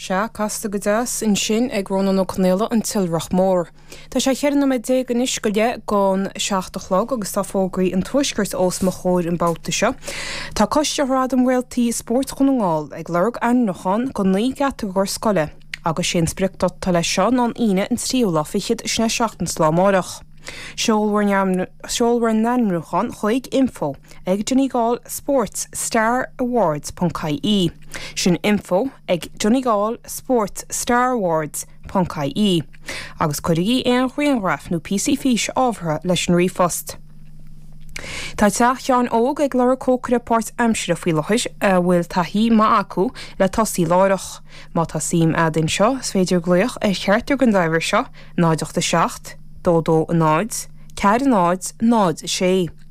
Sea, casta go deas ansin ag Rónán Ó Conaola, an tIolrach Mór. Tá sé cheithre nóiméad déag anois go leith gon seacht a chlog agus tá fógraí an tuaiscirt ós mo chomhair an babhta seo. Tá Coiste Ghradam Réaltaí Spóirt Dhún na nGall ag lorg ainmniúchán go naoi gcatagóir scoile agus sé an spriocdáta leis seo ná an Aoine an tríú lá fichead sin é seachtain ón lá amárach. Seol bhur n-ainmniúchán chuig, info. ag Donegal Sports Star Awards ponc ie Sin Info ag Donegal Sports Star Awards ponc ie agus cuirigí aon ghrianghraif nó píosaí fís ábhartha leis an ríomhphost Tá teach Sheáin Óg ag lorg cócaire páirt aimsire faoi láthair a bhfuil taithí maith acu le tosaí láithreach. Má tá suim a'd ann seo is féidir glaoch ar Ghearóid ar an uimhir seo 0 8 7 2 2 0 4 0 0 6.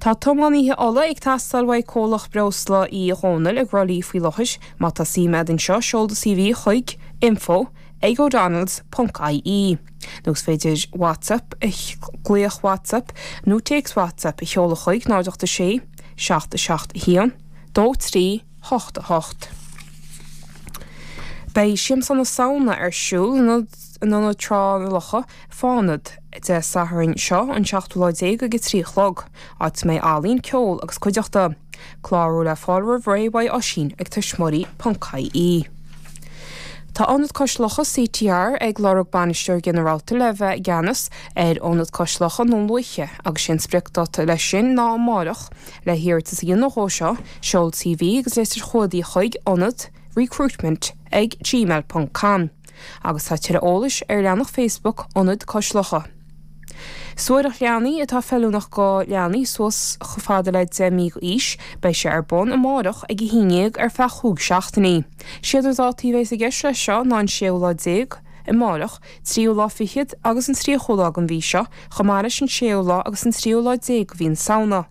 Tá tiománaí ola ag teastáil uaidh comhlacht breosla Uí Dhónaill i gCroithlí faoi láthair. Má tá suim agat ann seo, seol do CV chuig, info, ag odonnells, ponc, ie. Nó is féidir WhatsApp, glaoch WhatsApp nó téacs WhatsApp a sheoladh chuig, 086 77 1 2388. Beidh Siamsa na Samhna ar siúl in. in Ionad Thrá Locha, Fánad, Dé Sathairn seo, an seachtú lá déag ag a trí a chlog, áit a mbeidh ealaíon, ceol agus cuideachta. Clárú le fáil roimh ré uaidh Oisín ag tuismitheoirí ponc ie. Tá Ionad Cois Locha CTR ag lorg Bainisteoir Ginearálta le bheith i gceannas ar Ionad Cois Locha Dhún Lúiche agus 'sé an spriocdáta leis sin ná amárach. Le hiarratas a dhéanamh dhó seo, seol CV agus litir chumhdaigh chuig, ionad, recruitment ag gmail ponc com. Agus tá tuilleadh eolais ar leathnach Facebook Ionad Cois Locha. Suaithreacht leanaí atá feiliúnach go leanaí suas chomh fada le 10 mí d'aois. Beidh sé ar bun amárach ag a haon dhéag ar feadh chúig seachtainí. Is iad na dátaí a bheas i gceist leis seo ná an séú lá déag, amárach, tríú lá fichead agus an tríochú lá den mhí seo, chomh maith leis an séú lá agus an tríú lá déag de mhí na Samhna.